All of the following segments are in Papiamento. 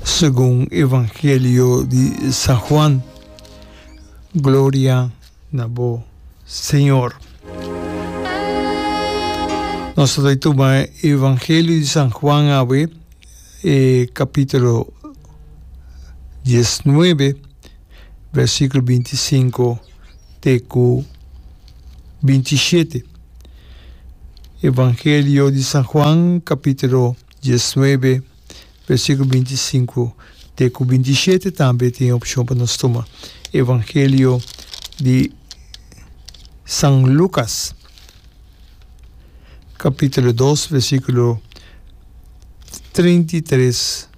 Segun Evangelio di San Juan. Gloria na bo, Señor. Nos ta bai tuma Evangelio di San Juan awe, e capítulo 19, versículo 25 te ku bintishete. Evangelio di San Juan kapitulo diesnuebe versikulo bintisinku te ku bintishete tambe tin e opshon pa nos tuma. Evangelio di San Lukas kapitulo dos versikulo treinta i tres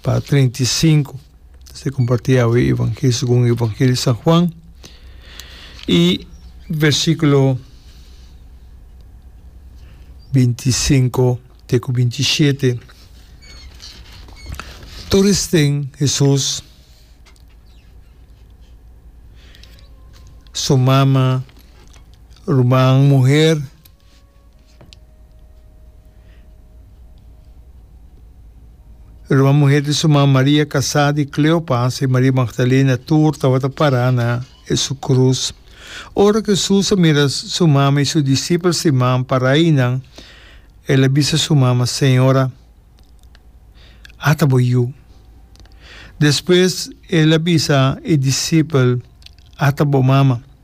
pa treinta i sinku. ta ser comparti awe evangelio segun evangelio San Juan y versiculo binti i sinku te ku binti i shete tur esten Hesus su mama ruman muher. Ruma muhé di su man Maria kasá di Kleopas i Maria Magdalena tur tabata pará na e su krus. Ora ku Hesus a mira su mama i su disipel si man pará einan, el a bisa su mama, Señora, ata bo yu. Despues el a bisa e disipel, Ata bo mama.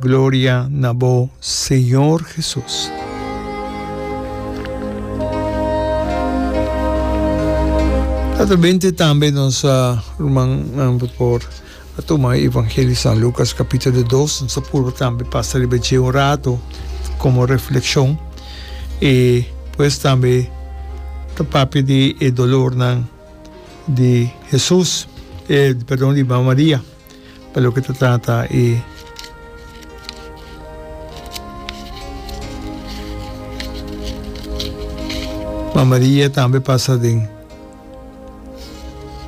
Gloria na bo Señor Jesus. Latabente tambe nos uh, ruman uh, por favor a toma Evangelio San Lucas capítulo 2 nos apurba tambe pasa riba je un rato como reflexión e pues tambe ta papi di e dolor nan di Jesús eh, perdón di María pa loke ta trata e ma Maria tambe pasa den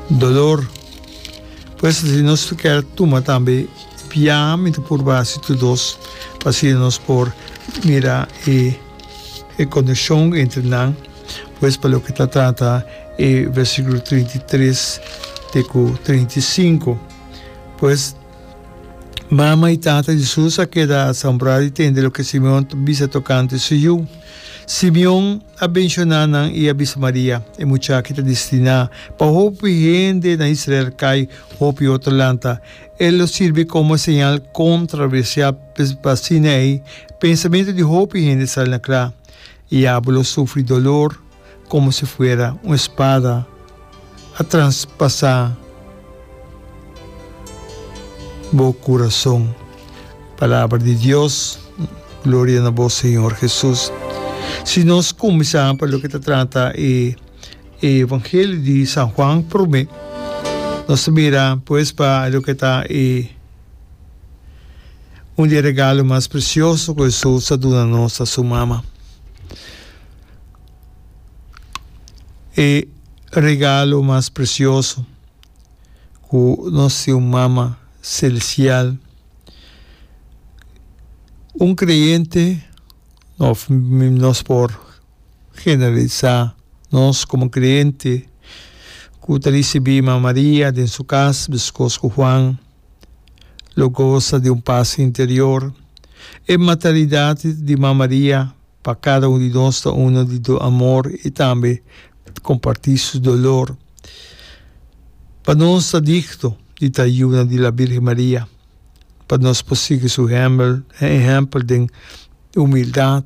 dolor por eso si nos ta kier tuma tambe biaha mi ta purba hasi tur dos pa asina nos por mira e coneccion entre nan. Pues pa loke ta trata e versikulo trinta i tres te ku trinta i sinku, pues mama i tata di Jesus a keda asombrá di tende loke Simeon ta bisa tokante su yu. Simeon a benshoná nan i a bisa Maria, E muchaki ta destiná pa hopi hende na Israel kai hopi otro lanta. El lo sirbi komo señal kontraversial, pues asina ei pensamentu di hopi hende sal na kla. Diablo sufri dolor komo si fuera un espada a transpasá bo kurason. Palabra di Dios, Gloria na bo Señor Hesus. Si nos kuminsá pa loke ta trata e Evangelio di San Juan promé, nos ta mira pues pa loke ta e. Un di e regalo mas presioso ku Hesus a duna nos ta su mama. E regalo mas presioso ku nos tin un mama selestial. Un kreyente òf nos por generalisá nos komo kreyente ku ta risibí Mama Maria den su kas, biskos ku Juan. lo gosa di un pas interior. E maternidad di Ma Maria pa cada un di nos ta uno di do amor y tambe comparti su dolor. Pa nos ta digno di ta yuna di la Virgen Maria pa nos por sigui su ehempel den humildad,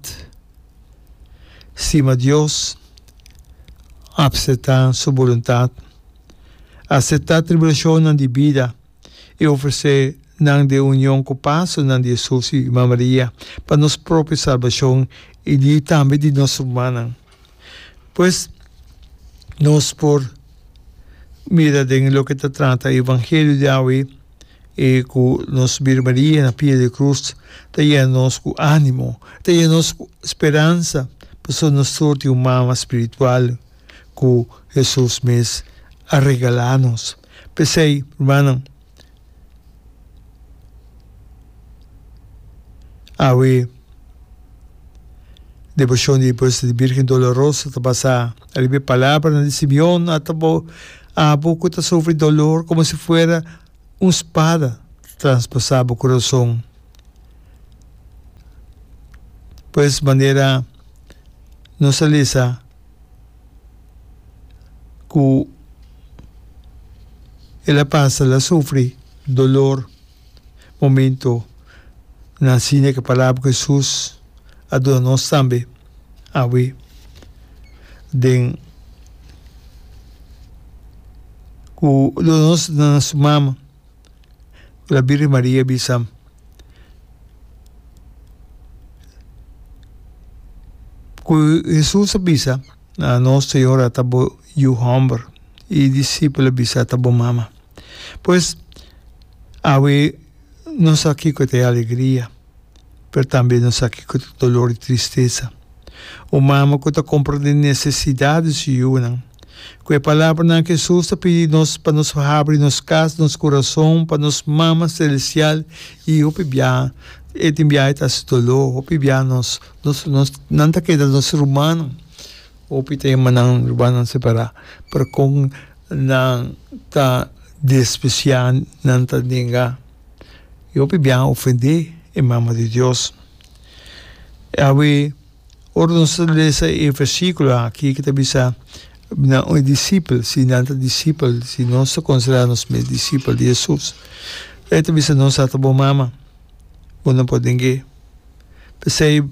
stima Dios, acepta su voluntad. Aseptá tribulashonnan di bida i ofresé nan den union ku pasonan di Hesus i Mama Maria pa nos propio salbashon i di tambe di nos rumannan. Pues, nos por mira den loke ta trata e evangelio di awe e ku nos Birhen Maria na pia di krus ta yena nos ku ánimo, ta yena nos ku speransa pasobra nos tur tin un Mama spiritual ku Hesus mes a regalá nos. P'esei, rumannan, awe Devoshon di Puesta di Bírgen Dolorosa ta basá riba e palabranan di Simeon, Ata bo, abo ku ta sufri dolor, komo si fuera un spada ta transpasá bo kurason. Pues, manera nos a lesa ku el a pasa, el a sufri dolor momento nan sina ku e palabra ku Hesus a duna nos tambe awe den ku duna nos nan su mama. La Birgen Maria bisam, ku Hesus a bisa na nos Señor ata bo yu hòmber i e disipel a bisa ata bo mama. Pues, awe no sa kiko ta e alegria, pero tambe no sa kiko ta e dolor i tristesa. Un mama ku ta komprondé e nesesidat di su yunan Ku e palabranan Hesus ta pidi nos pa nos habri nos kas, nos kurason pa nos Mama Selestial i hopi biaha e tin biaha e ta hasi doló. Hopi biaha nos nos nos nan ta keda nos rumannan, hopi ta hermannan rumannan separá, pero kon nan ta despresiá, nan ta nega i hopi biaha ofendé e Mama di Dios. Awe. Ora nos ta lesa e versíkulo akí ku ta bisa nan un disipel, si nan ta disipel, si nos ta konsiderá nos mes disipel di Hesus, e ta bisa nos a ta bo mama, bo no por deng'é. P'esei,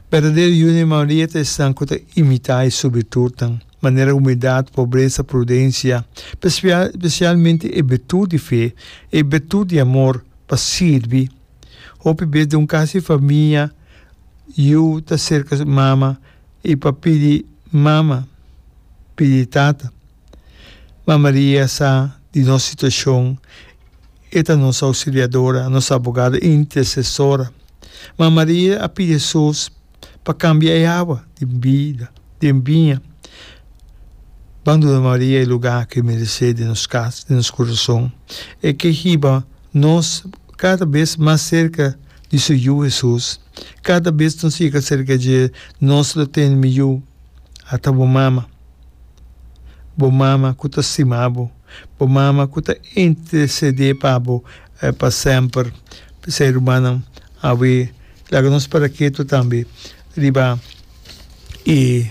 berdadero yuda i Maria ta esnan ku ta imitá e su virtutnan, manera humildat, pobresa, prudensia, spesialmente e virtut di fe, e virtut di amor pa sirbi Hopi bes den un kas di famia yu ta serka su mama i pa pidi mama, pidi tata. Ma Maria sa di nos situashon, e ta nos Ausiliadora, nos Abogada, Intersesora. Ma Maria a pidi Hesus. pa kambia e awa di bida den biña. Banduna Maria e lugá ku e meresé den nos kas, den nos kurason. E ke hiba nos kada bes mas serka di su Yu Hesus. Kada bes nos yega serka dje, nos lo tene miyó ata bo mama. Bo mama ku ta stima bo. Bo mama ku ta intersedé pa bo pa semper. P'esei, rumannan. Awe laga nos para ketu tambe riba e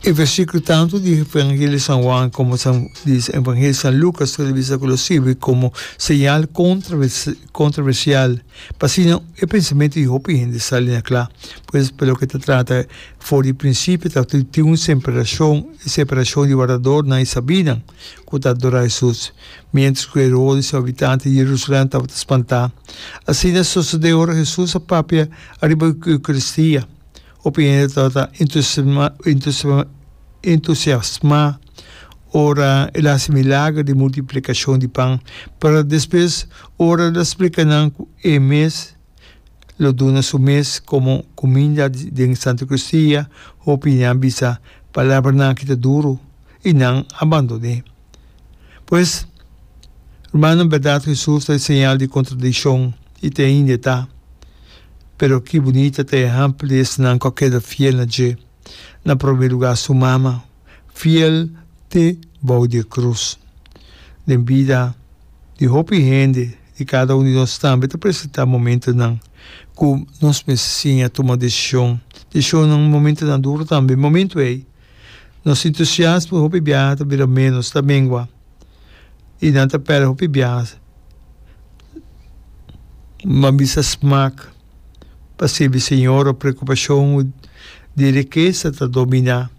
e versíkulo tantu di Evangelio San Juan komo San di Evangelio San Lukas tur a bisa ku lo sirbi komo señal kontravers kontroversial pa asina e pensamentu di hopi hende sali na kla. Pues pa loke ta trata for di prinsipio ta tin un semperashon separashon di waradornan i sabinan. ku ta adorá Hesus, miéntras ku Herodis, habitanti di Jerusalén, tabata spantá. Asina sosodé ora Hesus a papia ariba di Eukaristía. Hopi hende tabata entusiasmá ora el a hasi milager di multiplikashon di pan, pero despues ora el a splika nan ku e mes lo duna su mes komo kuminda den Santu Eukaristía, hopi di nan bisa, Palabranan ki ta duru. i nan a bandoné. Pues, rumannan, bèrdat Hesus ta e señal di kontradikshon i ta e indetá. Pero ki bunita ta e ehèmpel di esnan ku a keda fiel na dje, na promé lugá su mama, fiel te bou di e krus! Den bida di hopi hende, di kada un di nos tambe ta presentá momentunan ku nos mester siña tuma desishon. Deshonnan momentunan duru tambe. Momentu ei. Nos entusiasmo hopi biaha ta bira menos, ta mengua, i nan ta pèrdè hopi biaha pa bisa smak pa sirbi Señor òf preokupashon di rikesa ta dominá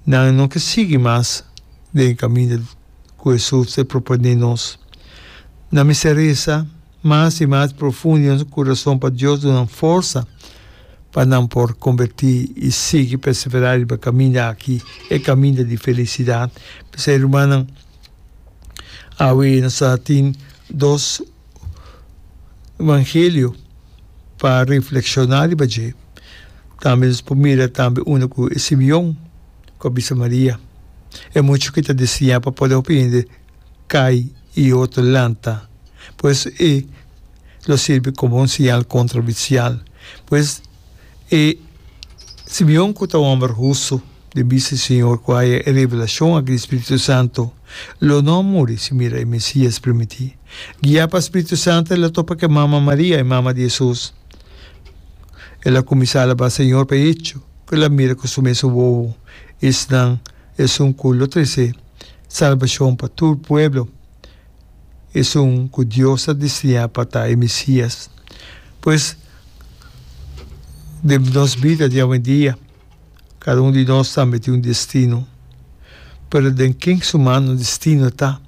nan. No ke sigui mas den e kaminda ku Hesus e proponé nos. Nan mester resa Mas i mas profundo den su curason pa Dios dunnan forsa pa nan por converti i sigui persevera riba e caminda aki, e caminda di felicidad. P'esei rumannan, awe nos ta tin dos Evangelio pa reflexiona riba dje. Tambe nos por mira tambe unda cu e Simeon cu a bisa Maria. E mucho ki ta desiña pa poder hopi hende kai i otro lanta. Pues e lo sirbi komo un siñal kontra bisial. Pues e Simeon ku ta hòmber hustu den bista di Señor ku haya e revelashon aki di spiritu santu, lo no a muri sin mira e Mesias primiti. Guiá pa spiritu santu el a topa ku e mama Maria, e mama di Hesus. El a kuminsá alabá Señor pa e hecho ku el a mira ku su mes wowo esnan. Esun ku lo trese salbashon pa tur pueblo. Esun ku Dios a destiñá pa ta e Mesías. Pues, den nos bida di awendia, kada un di nos tambe tin un destino. Pero den ken su mano destino ta?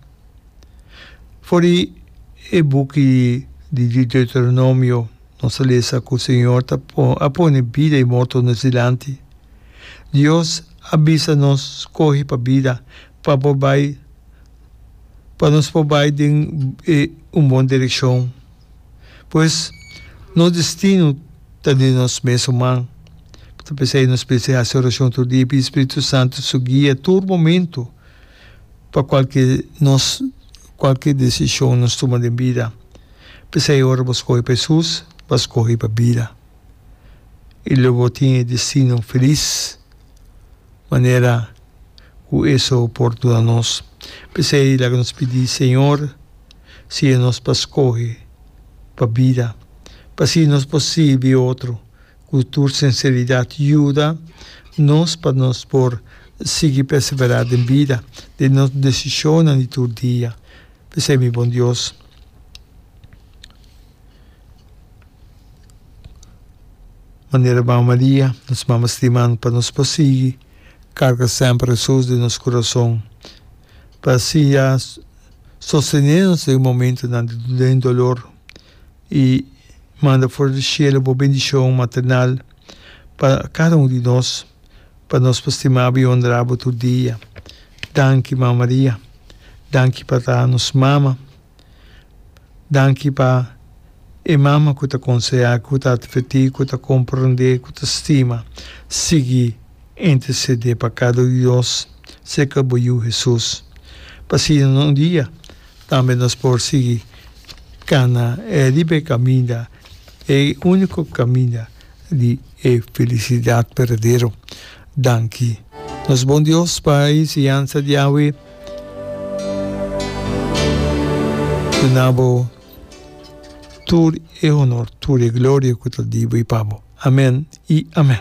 For di e buki di Deuteronomio. Nos a lesa cu Señor ta a pone bida y morto nos dilanti. Dios a bisa nos scoge pa bida pa por bay pa nos por bay den un bon direccion. Pues nos destino ta den nos mesun man. Ta p'esey nos mester haci oracion tur dia y pidi Spiritu Santo su guia tur momento pa cualke nos. Cualkier decision nos tuma den bida, p'esei ora bo scohi pa Jesus, b'a scohi pa bida. I lo bo tin e destino feliz, manera cu eso por duna nos. P'esei laga nos pidi Señor siña nos pa scohi pa bida, p'asi nos por sirbi otro. Ku tur sinseridat yuda nos pa nos por sigui perseverá den bida, den nos desishonnan di tur dia. P'esei mi bon Dios, manera Mama Maria, nos Mama Stimá, pa nos por sigui karga semper Hesus den nos kurason, pa siña sostené nos den momentunan di den dolor. i manda for di shelu bo bendishon maternal pa kada un di nos, pa nos por stimabo i onrabo tur dia. Danki, Mama Maria. Danki pa ta nos Mama. Danki pa e Mama ku ta konsehá, ku ta atvertí, ku ta komprendé, ku ta stima. Sigui intersedé pa kada un di nos serka bo Yu Hesus. Pa asina nos un dia. Tambe nos por sigui cana e libe caminda, e unico caminda di e felicidad berdadero. Danki, nos bon Dios, pa e enseñansa di awe. Duna Bo tur e honor, tur e gloria cu ta di Bo y pa Bo. Amen y amen.